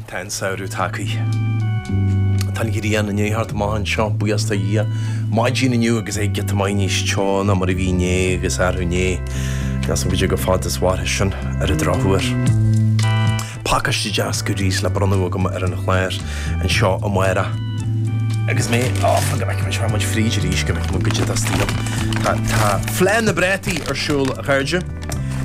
Tá an samhradh tagtha. Tá an ghrian i ndiaidh theacht amach anseo, buíochas do Dhia. Maidin inniu agus é giota maith níos teo ná mar a bhí inné agus arú inné. Níl a fhios agam cad é chomh fada is a mhairfidh sin ar an drochuair. Pacáiste deas goodies le bronnadh agam ar an chlár anseo amárach. Agus mé á fhógairt, go mbeidh muid fríd arís, cad é atá istigh ann. Tá Fleá na bPrátaí ar siúl, a chairde,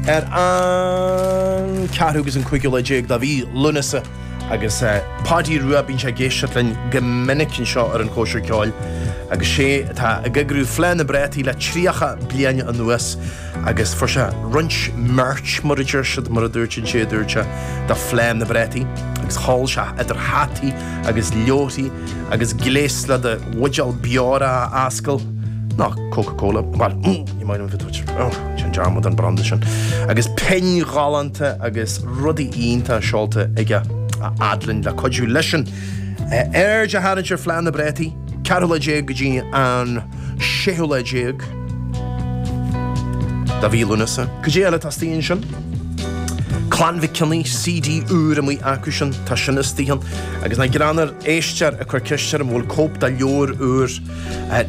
ar an 4ú agus an 15ú lá de mhí Lúnasa agus Páidí Rua, bíonn sé ag éisteacht linn go minic anseo ar an Chóisir Ceoil agus 'sé atá ag eagrú Fleá na bPrátaí le 30 bliain anuas. Agus fuair sé roinnt merch, mar a deir siad, mar a dúirt an té a dúirt sé, do Fleá na bPrátaí, agus sheol sé idir hataí agus leabharthaí agus gléas le do bhuidéal beora a fhoscladh, nó Coca Cola, bhuel, ní maith liom a bheith ag tabhairt sin dearmad den branda sin, agus pinn ghalánta agus rudaí iontacha seolta aige a fhad linn le cuidiú leisean aird a tharraingt ar Fleá na bPrátaí, ceathrú lá déag go dtí an. séú lá déag de mhí Lúnasa. Cad é eile atá istigh ansin? Clann Mhic Cionnaith, CD úr amuigh acu sin, tá sin istigh ann. Agus nach greannmhar, éisteoir ag cur ceiste orm an bhfuil cóip de leabhar úr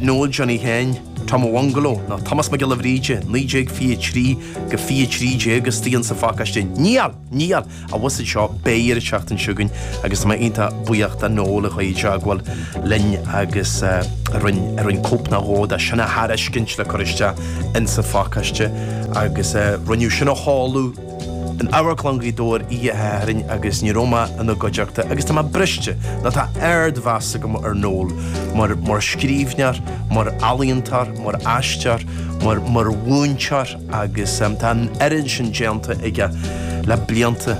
Noel Johnny Sheáin, Tom an Bhungaló, nó Tomás Mac Giolla Bhríde, 1923-2013 istigh ann sa phacáiste. Níl! Níl! A bhusaid seo, beidh an tseachtain seo chugainn agus tá mé iontach buíoch de Noel a chuaigh i dteagmháil linn agus a rinne a rinne cóip nó dhó de sin a thairiscint le cur isteach ins an phacáiste agus rinneadh sin a sheoladh in Amharclann Ghaoth Dobhair oíche Shathairn agus ní raibh mé ina gcuideachta agus tá mé briste nó tá ard mheas agam ar Noel mar mar scríbhneoir, mar ealaíontóir, mar aisteoir, mar mar mhúinteoir. agus tá an oiread sin déanta aige le blianta,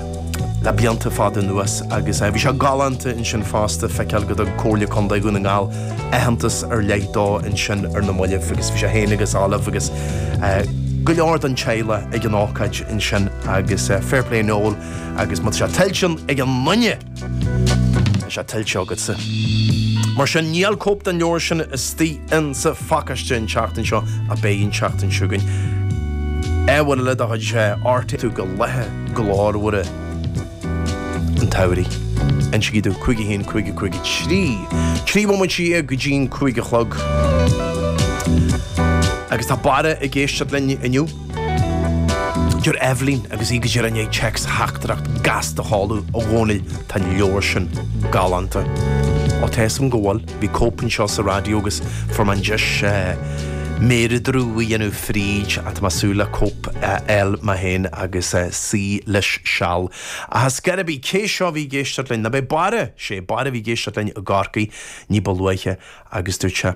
le blianta fada anuas agus bhí sé galánta ansin fosta feiceáil go dtug Comhairle Contae Dhún na nGall aitheantas ar leith dó ansin ar na moillibh agus bhí sé féin agus Olive agus go leor den teaghlaigh ag an ócáid ansin agus fair play Noel agus má tá sé tuillte ag aon duine! Tá sé tuillte agatsa. Mar sin, níl cóip den leabhar sin istigh in sa phacáiste an tseachtain seo ach beidh an tseachtain seo chugainn. Ar mhaithe le do chuid arte tú go laethe glórmhara an tsamhraidh. Insígí domh cúig a haon, cúig a cúig a trí, trí bhomaite dhéag go dtí'n cúig a chlog. Agus tá Barra ag éisteacht linn inniu. Deir Eibhlín, agus í go díreach i ndiaidh téacstheachtaireacht gasta a sheoladh, 'A Dhónaill, tá an leabhar sin galánta. Ó, tá 'fhios a'm go bhfuil. Bhí cóip anseo sa Raidió agus fuair mé an deis méaradradh a dhéanamh fríd, tá mé ag súil le cóip a fháil mé féin agus suí leis seal. Ach is cé a bhí, cé seo a bhí ag éisteacht linn? Nó b'é Barra, 'sé Barra a bhí ag éisteacht linn i gCorcaigh ní ba luaithe agus dúirt sé,